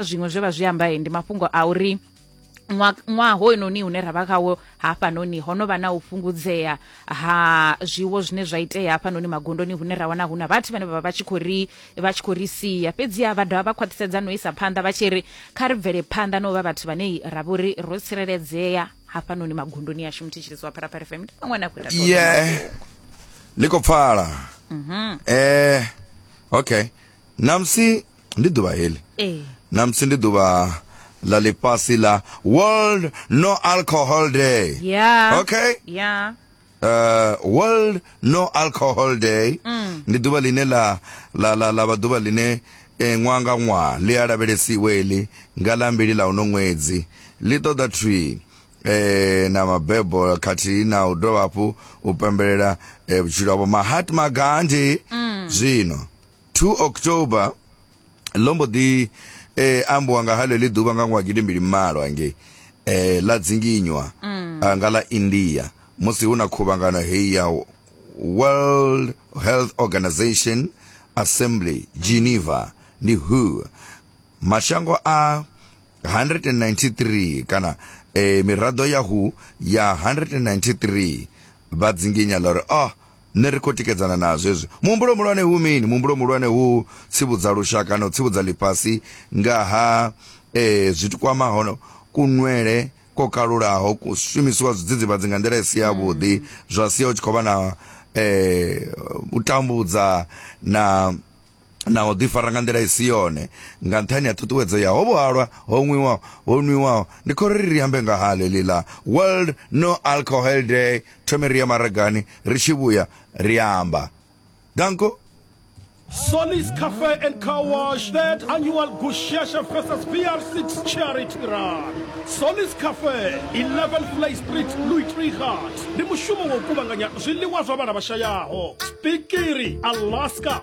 zwiṅwe zwe vha zwi amba ndi mafhungo a uri ṅwaha hoyunoni hune ra vha khawo hafhanoni ho no vha na u fhungudzea ha zwiwo zwine zwa itea hafhanoni magondoni hune ra wana hu na vhathu vhane vha vha vha tshi khou ri vha tshi khou ri sia fhedziha vha dovha vha khwaṱhisedza no isa phanḓa vha tshi ri kha ri bvele phanḓa no vha vhathu vhane ra vho ri ro tsireledzea hafhanoni magondoni yashu muthetshelezi wa pharapara fm ndi vhaṅwe na khou ita ye ni khou pfala um okay namusi ndi ḓuvha heḽi ee namusi ndi ḓuvha ḽa ḽifhasi ḽa world no alcohol day ya Okay. ya uh, world no alcohol day Mm. ndi ḓuvha ḽine ḽa ḽa ḽa ḽa vha ḓuvha ḽine eh, ṅwaha nga ṅwaha ḽi a lavhelesiwe ḽi nga ḽa mbili ḽa uno ṅwedzi ḽi ṱoḓa thwi eh, na mabebo khathihi na u dovha hafhu u pembelela eh, vhutshilo havho mahatma gandhi Mm. zwino 2 october ḽo mbo ḓi eh, ambiwa nga ha ḽeḽi ḓuvha nga ṅwaha gidimbili malo hangei eh, ḽa dzinginywa ah, nga ḽa india musi hu na khuvhangano heyi ya world health organization assembly geneva ndi who mashango a 193 kana eh, miraḓo ya who ya 193 vha dzinginya ḽa uri oh Nṋe ri khou tikedzana nazwo hezwi. Muhumbulo muhulwane hu mini? Muhumbulo muhulwane hu tsivhudza lushaka na u tsivhudza ḽifhasi nga ha e, zwithu kwamaho kunwele ko kalulaho, ku shumisiwa zwidzidzivhadzi nga nḓila i si ya vhuḓi, zwa sia u tshi khou vha na e, u tambudza na na u ḓifara nga nḓila i si yone nga nṱhani ha ṱhuṱuwedzo ya ho vhuhalwa ho nwiwaho ho nwiwaho ndi khori ri ambe nga ha ḽeḽi ḽa world no alcohol day thome ri ya maragani ri tshi vhuya ri amba danko Solis Cafe and Car Wash, third annual Gushasha versus VR6 charity run. Solis Cafe, 11 Flay Street, Louis Trichardt. Ndi mushumo wa u kuvhanganya zwiḽiwa zwa vhana vhashayaho. Spikiri, Alaska,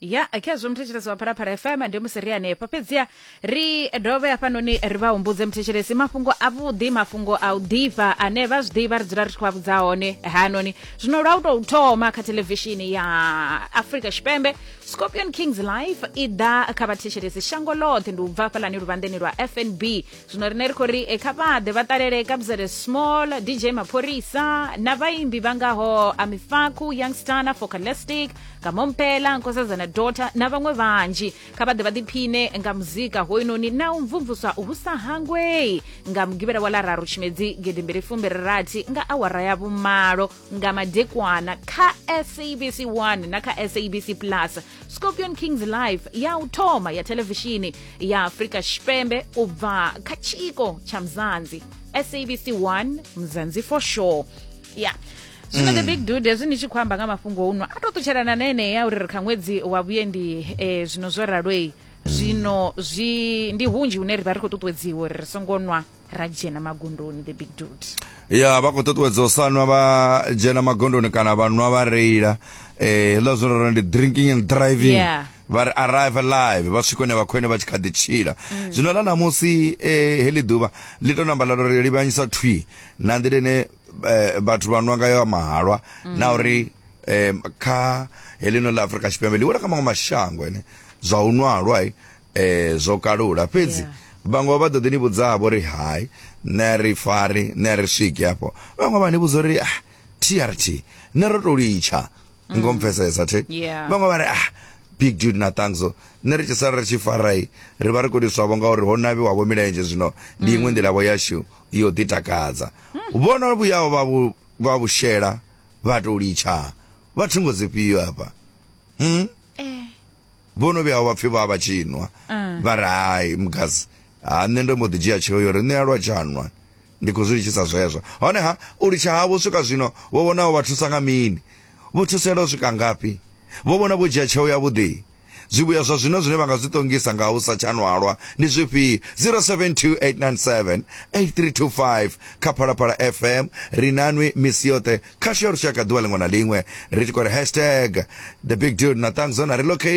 ya khezwo muthetshelesi wa phalaphala fm ndi musi ri hanefha fhedziha ri dovhe hafhanoni ri vha humbudze muthetshelesi mafhungo avhuḓi mafhungo a u ḓifha ane vha zwi ḓivha ri dzula ri tshi khou a vhudza hone hanoni zwino lwa u tou thoma kha thelevishini ya afrika tshipembe scorpion kings life i ḓa kha vhathetshelesi shango ḽoṱhe ndi u bva hafhalani luvhanḓeni lwa fnb zwino rine ri khou ri e kha vhaḓe vha ṱalele kabzele small dj mapholisa na vhaimbi vha ngaho amifaku youngstar na focalistic kamompela nkosazana dota na vhaṅwe vhanzhi kha vhaḓe vha ḓiphine nga muzika hoyunoni na u mvumvuswa hu sa hangwei nga mugivhela wa lararu tshimedzi gedimbili fumbiri rathi nga awara ya vhumalo nga madekwana kha sabc 1 na kha sabc plus scorpion kings live ya u thoma ya televishini ya afrika tshipembe u bva kha tshiko tsha mzanzi sabc 1 mzanzi for sure ya zwino the big dude hezwi ni tshi khou amba nga mafhungo uno a to ṱutshelana na enea uri ri kha ṅwedzi wa vhuendi eh, zwino zwo ralwei zwino zwi ndi hunzhi hune ri vha ri khou ṱuṱuwedziwa uri ri songo nwa ra dzhena magondoni the big dude ya vha khou ṱuṱuwedza u sa nwa vha dzhena magondoni kana vha nwa vha reila eh hezwiḽa zwo rora ndi drinking and driving Yeah. vha ri arrive alive vha swika hune vha khou ene vha tshi kha ḓi tshila zwino ḽa ṋamusi eh heḽi ḓuvha ḽi tou namba ḽa tou ri livhanyisa thwi na nḓila ine eh, vhathu vha nwa ngayo mahalwa na uri eh, kha heḽino ḽa afurika tshipembe ḽi wela kha maṅwe mashango ene zwa u nwa halwai eh zwo kalula fhedzi Yeah. vhaṅwe vha ḓo ḓi ni vhudza vho ri hai nṋe ri fari nṋe ri swiki hafho vhaṅwe vha ni vhudza uri ah trt nṋe ro to litsha ngo mpfesesa thi Yeah. vhaṅwe vha ri ah big dude na thanxo nṋe ri tshi sala ri tshi farai ri vha ri khou tiswavho ngauri ho navhiwavho milenzhe zwino ndi iṅwe nḓilavho yashu yo ḓi takadza vhono vhuyaho vha vhu- vha vhu shela vha to litsha vha thungo dzifhio hafha vho no vhuya vha pfhi vha vha tshi nwa mm. vha ri hai mugazi ha nṋe ndo mbo ḓi dzhia tsheo yo ri nṋe a lwa tshanwa ndi khou zwi litshisa zwezwo honeha u litsha havho swika zwino vho vhonaho vha thusa nga mini vho thusela u swika ngafhi vho vhona vho dzhia tsheo yavhuḓi zwivhuya zwa zwino zwine vha nga zwi ṱongisa nga u sa tsha nwalwa ndi zwifhio 0728978325 kha phalaphala fm ri nanwi misi yoṱhe khasho ya lushaka ḓuvha ḽiṅwe na ḽiṅwe ri tshi khou ri hashtag the big dude na ṱangzo na relocate